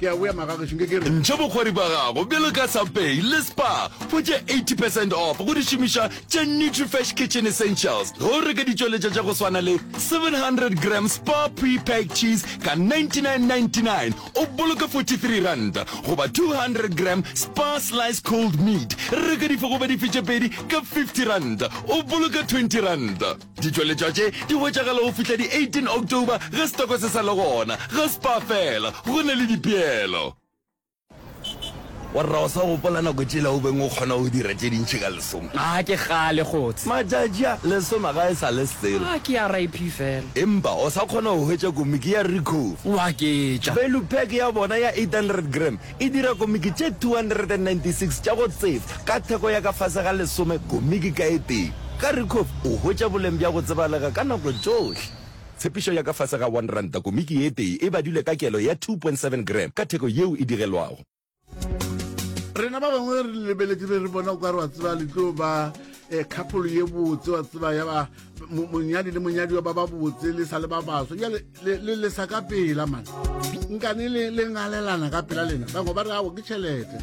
Ke a boya magagešo nke ke re. Ntšha bokgwari bja gago bjalo ka Subway le Spar go tše 80 percent off go dišomišwa tša Nutrifresh Kitchen Essentials ge o reka ditšweletša tša go swana le 700 gram Spar Pre-Packed Cheese ka 99.99 o boloke 43 ranta goba 200 gram Spar Sliced Cold Meat reka dife goba dife tše pedi ka 50 ranta o boloke 20 ranta. Ditšweletšwa tše di hwetšagala go fihla di 18 October ge setoko se sa le gona. Ge Spar fela, go na le dipeelo. Warra o sa gopola nako tšela o beng o kgona go dira tše dintši ka lesoma? A ke kgale kgotshe. Matšatši a, lesoma ga e sa le selo. A ke RIP fela. Empa o sa kgona go hwetša komiki ya Ricoh? Wa ketša. Value pack ya bona ya 800 gram E dira komiki tše 296 tša go tseba ka theko ya ka fase ga lesome komiki ka e tee. Karikhof o hwetša boleng bja go tsebalega ka nako tšohle. Tshepišo ya ka fase ga R1 komiki e tee e badilwe ka kelo ya 2.7 gram ka theko yeo e digelwago. Rena ba bangwe re le lebeletše be re bona o ka re wa tseba le tlo ba khapholo ye botse wa tseba ya ba monyadi le monyadiwa ba ba botse le sa le ba baso jale le lesa ka pela mane nkane le ngalelana ka pela lena bangwe ba re ao ke tšhelete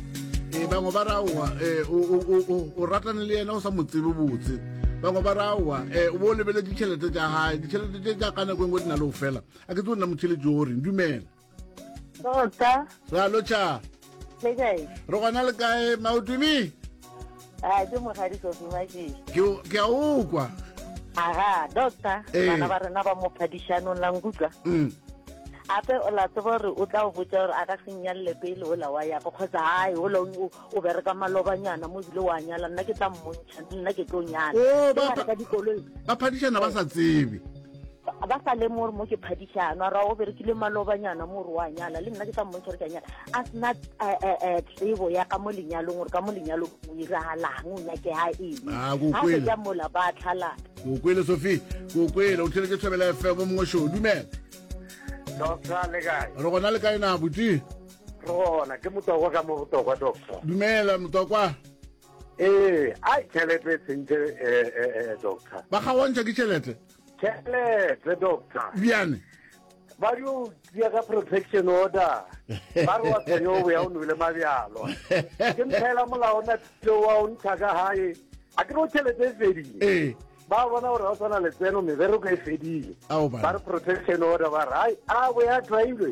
e bangwe ba re aowa e, o ratane le yena o sa mo tsebe botse bangwe ba re aowa e, o bo o lebeletse ditšhelete tša gae ditšhelete tše tša ka nako engwe di na le go fela a ke tse o nna motšhelete o reng dumela tota ra lotšha le kae re gona le kae maotumi a ke mogadi sofi mašii ke a o kwa aga doctor eh. bana ba rena ba mo phadišanong la nkutlwa mm. ape o la tseba gore o tla o botsa gore a ka senyalele pele o la wa yako kgotsa gae o la O bereka malobanyana mo ebile wa nyala nna ke tla mmontšha mme nna ke tlo nyala Oh, Ke ba- ngwana ka dikoloi ba phadišana ba sa tsebe ba ba sa lemo gore mo ke phadišano a ra o berekile malobanyana mo gore wa nyala le nna ke tla mmontšha gore ke a nyala a sena eh, eh, eh, tsebo ya ka mo lenyalong gore ka mo lenyalong o iragalang o nyakega eng Ah, ko ga kwele. se ka mola ba tlhalana ke o kwele sophie ke o kwele o tlhele ke thobela fm mongwe show dumela Doctor le kae? re gona le kae na botse Re gona, ke Motokwa ka mo Botokwa, Doctor. Dumela, Motokwa. Ee, a tšhelete e sentše eh, eh, eh, doctor. Ba kgaontšha ke tšhelete. Tšhelete doctor. Bjane. Ba yo tšea ka protection order. Ba re wa tsenya o boya o nwele mabjalo. Ke mphela molao na tlo wa o ntsha ka gae. A ke no tšhelete e fedile. Ee. ba bona gore ga o tshwana letseno mebereko e fedile ba re protection order ba re ai a bo ya trailwe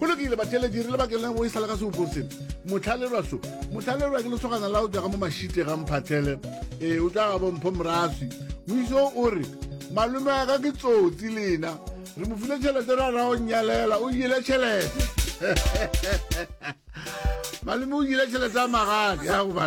go lokile batheletši re le bakeng la go e sala ka seopong seno motlhalerwa so motlhalerwa ke lesogana la o tswaga mo mashite ga mphathele ee o tswaga bompho moraswi moiso o re malome wa ka ke tsotsi lena re mo file tšhelete ra ra o nyalela o jele tšhelete malome o jele tšhelete ya magadi ya goba